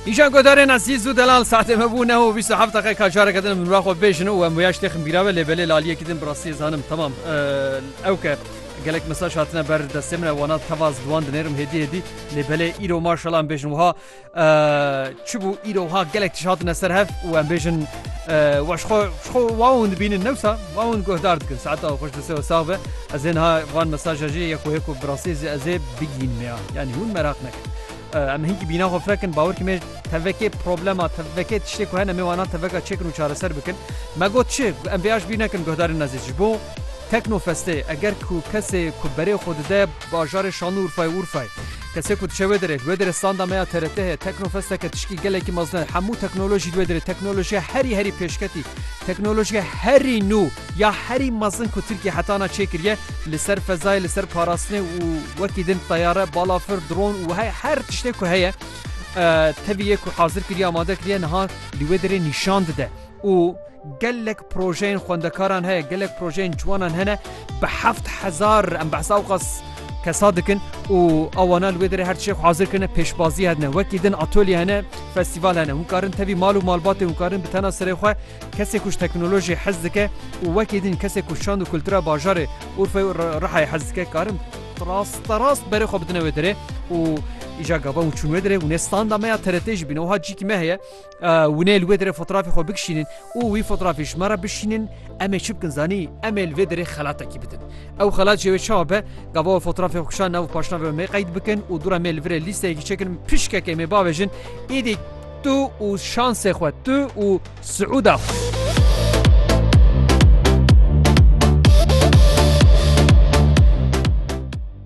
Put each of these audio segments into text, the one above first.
Îşan godarên Ezîz û Delal saetê me bû neho bîst û heft deqe ka careke din min xwe bêjin û em wêya ji tê ximbîrabe lê belê laliyekî din bi rastiyê zanim temam ew ke gelek mesaj hatine ber destê min e wana teva ez bi wan dinêrim hêdî hêdî lê belê îro maşala em bêjin wiha çi bû îro wiha gelek tişt hatine ser hev û em bêjin Weş xwe ji xwe wa hûn dibînin newsa wa hûn guhdar dikin saeta xweş bi sew sax be ez ê niha van mesaja jê yek û hêk û birasê zî ez ê bigînim ya yanî hûn meraq nekin em hinkî bîna xwe firekin bawer kî me tevekê problema tevekê tiştê ku hene me wana teveka çêkin û çareser bikin me got çi em vêya ji bîr nekin guhdarên ezîz ji bo tekno festê eger ku kesê ku berê xwe dide Bajarê Şanûrfayê Urfayê. Kesê ku diçe wê derê, li wê derê standa me ya TRT heye, Teknofesteke tişkî gelekî mezin e. Hemû teknolojî li wê derê, teknolojiya herî herî pêşketî, teknolojiya herî nû ya herî mezin ku Tirkiye heta na çêkiriye li ser fezayê, li ser parastinê û wekî din teyare, balafir, dron û wiha her tiştê ku heye tevî yê ku hazir kiriye, amade kiriye niha li wê derê nîşan dide û Gelek projeyên xwendekaran heye, gelek projeyên ciwanan hene bi heft hezar em behsa awqas kesa dikin û awana li wê derê her tişek hazir kirine pêşbazî hedine wekî din atolye hene festîval hene hûn karin tevî mal û malbatê hûn karin bi tena serê xwe kesê kuş teknolojiyê hez dike û wekî din kesê ku şand û kultura bajarê urfe rihayê hez dike karin rasterast berê xwe bidine wê derê û îja gava û çûn wê derê û nê standa me ya TRT jî bîne wiha cîkî me heye Hûn ê li wê derê fotrafê xwe bikişînin û wî fotrafê ji me re bişînin, em ê çi bikin zanî? Em ê li vê derê xelatekî bidin. Ew xelat jê wê çawa be? Gava wê fotrafê xwe kişand nav û paşnavê wê mê qeyd bikin û dûra mê li vir ê lîsteyekî çekin min pişkekê mê bavêjin Îdî tu û şansê xwe, tu û siûda xwe.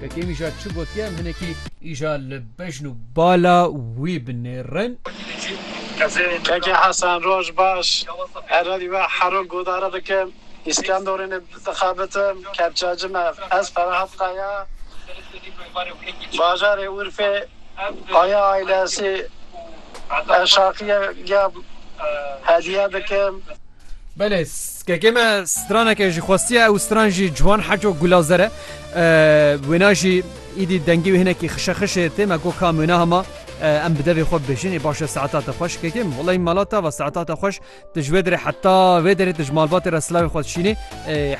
Pkk îja çi gotiye em hinekî îja li bejn û bala wî binêrin. Keke Hesen roj baş. Herrerî we hero godare bikim. Îskenderûnê dixebitim. Kepçeci me ez Ferahat Kaya. Bajarê Urfê Kaya ailesî eşaqiye giya hediye bikim. Belê skekê me straneke ji xwestiye ew stran jî ciwan heco gulazer e wêna jî îdî dengî wê hinekî xişexişê tê me got kam wêna hema em bi devê xwe bibêjin ê baş e saeta te xweş kekê min welay mala te va saeta te xweş tu ji wê derê heta wê derê tu ji malbatê re silavê xwe dişînî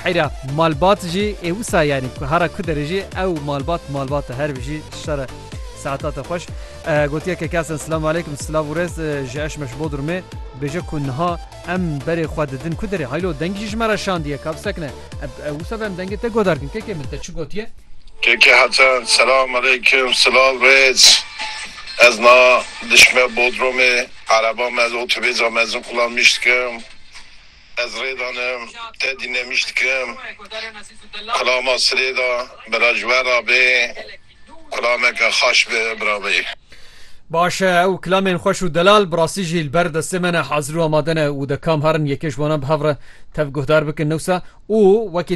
heyra malbat jî ê wisa yanî ku hera ku derê jî ew malbat malbat e her bijî şere saeta te xweş Gotiye ke kesên Silamu Aleykum, Silav û Rêz ji Eşme ji Bodrumê dibêje ku niha em berê xwe didin ku derê. Haylo dengî jî ji me re şandiye ka bisekine. Ev wisa be em dengê te guhdar dikin. Keke min te çi gotiye? Keke Hesen, Silamu Aleykum, Silav Rêz. Ez niha dişme Bodrumê. Ereba me li otobêza Mezinqula nîşt dikim. Ez rê danim, tedî nemîş dikim. Kulama sirê da bira ji we ra bê. Kulameke xaş be birabeyî. Baş e, ew kilamên xweş û delal bi rastî jî li ber destê me ne, hazir û amade ne û de kam herin yekê ji wan a bi hev re tev guhdar bikin newsa û wekî